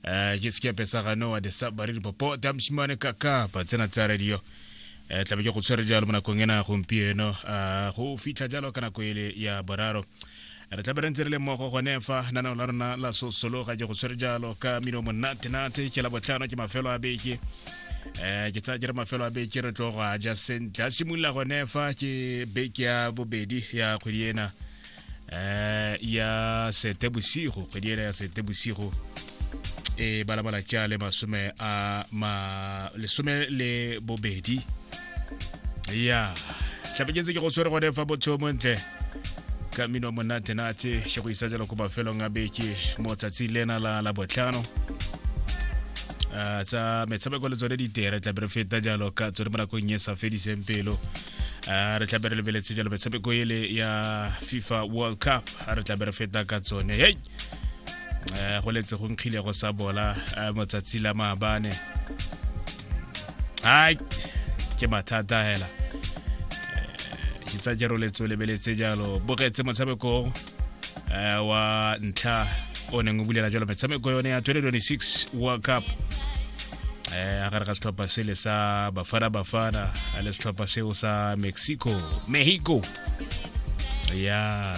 Eh, ke sekepe sa gano wa desabare dipopo tamshimane kaka pa tsena tsa radio um tlabe ke go tshwere jalo mo nakong ena gompieno um go fitlha jalo ka nako ele ya boraro re tlabe re ntse re le mmogo gone fa nanao la rona la sosologa ke go tshwere jalo ka mino monatenate ke la botlhano ke mafelo a beke um ke tsaya ke re mafelo a beke re tlo go a ja sentle a simolola gone fa ke beke ya bobedi ya kgwedi ena eh, ya setebosigo kgwedi ena ya setebosigo e balabala tša le masome a ma lesome le bobedi ya tlapeketse ke go tshwere gone fa botho montle ka mmino wa monatenate ke go isa jalo ko mafelong a beke mo tsatsi lena la la botlhano Ah, tsa metshameko le tsone ditere tlabe re feta jalo ka tsone mo nakong e sa fediseng pelo uh, re tlabe re lebeletse jalo metshameko ele ya fifa world cup re tlabe re feta ka tsone hei uh, go letse go nkgile go sa bola uh, motsatsi la maabane hai ke mathata hela uh, itsa jero letso lebeletse jalo bogetse motshamekong uh, wa ntlha o neng o bulela jalo metshameko yone ya 2026 world cup eh a gare ga setlhopha sele sa bafana bafana a le setlhopha seo sa mexico mexico ya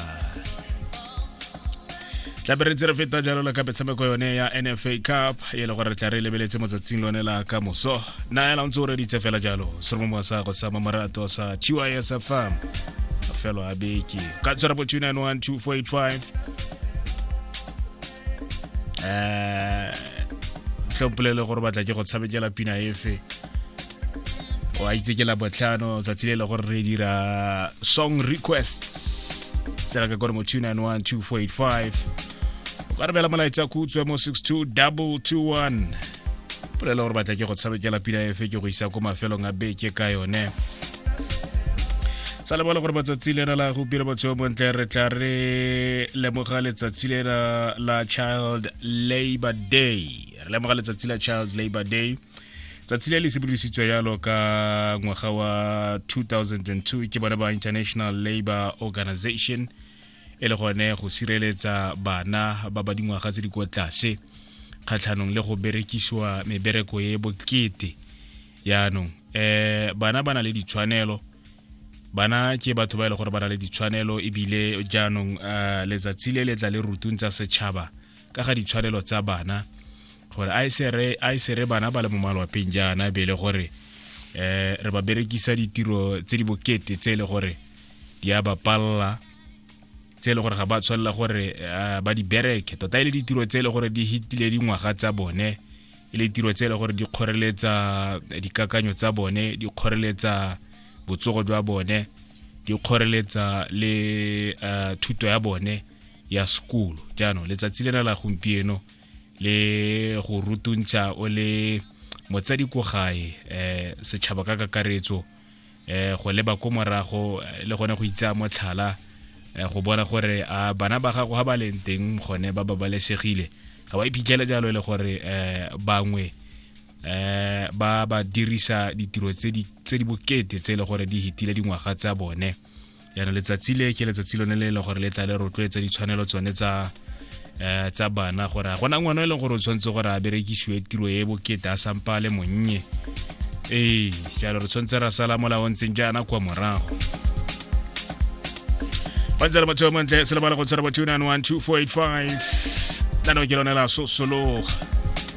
tlabe re tse re feta jalo le ka metshameko yone ya nfa cup e le gore re tla re lebeletse motsatsing lone la ka moso na ela ntse o reditse fela jalo seromongwa sa go sa mamorato sa tys fm felo a beke ka 0291245 eh tlhompolele gore batla ke go tshamekela pina efe o a itse ke la botlhano tsatsi le le gore re dira song requests tsela ka kore mo 291245 o ka rebela molaetsa ko utswe mo 62221 polela gore batla ke go tshamekela pina efe ke go isa ko mafelong a beke ka yone sa lebala gore matsatsi le la go pira botshelo bontle re tla re lemoga letsatsi le la child labor day re lemoga letsatsi la child labor day tsatsi le le sebodisitswe yalo ka ngwaga wa 2002 ke bone ba international labor organization e le gone go sireletsa bana ba ba dingwaga tse di kwa tlase kgatlhanong le go berekisiwa mebereko e bokete yaanong eh bana ba na le ditshwanelo bana ke batho ba e le gore ba na le ditshwanelo ebile jaanong eh, letsatsi le letla le rutung tsa setšhaba ka ga ditshwanelo tsa bana gore a e sere bana ba le mo malwapeng jaana be e le gore eh re ba berekisa ditiro tse di bokete tse e le gore di a ba palela tse e le gore ga ba tshwanela gore eh, ba di bereke tota e le ditiro tse e le gore di hitile dingwaga tsa bone e le tiro tse e le gore di kgoreletsa eh, dikakanyo tsa bone di kgoreletsa botsogo jwa bone di kgoreletsa le eh, thuto ya bone ya sekolo jaanong letsatsi lena la gompieno le go rutuntsha o le motsadi ko gae um setšhaba ka kakaretso eh go leba ko morago eh, le gone go itsaya motlhala eh, go bona gore a bana ba gago ga ba leng teng gone ba babalesegile ga ba iphitlhele jalo e le gore eh bangwe eh ba ba dirisa ditiro tse di tse di bokete tse e le gore di hitile dingwaga tsa bone yana letsatsi le ke letsatsi lone le e leng gore le tla le rotloetsa ditshwanelo tsone tsa um tsa bana gore a gona ngwana e leng gore o tshwanetse gore a berekisiwe tiro e bokete a sampa le monnye ee jalo re tshwanetse ra sala molao ntseng jaana kwa morago ba ntse re batho ba montle se lebala go tshwara batho 912 485 nano ke lone la sosologa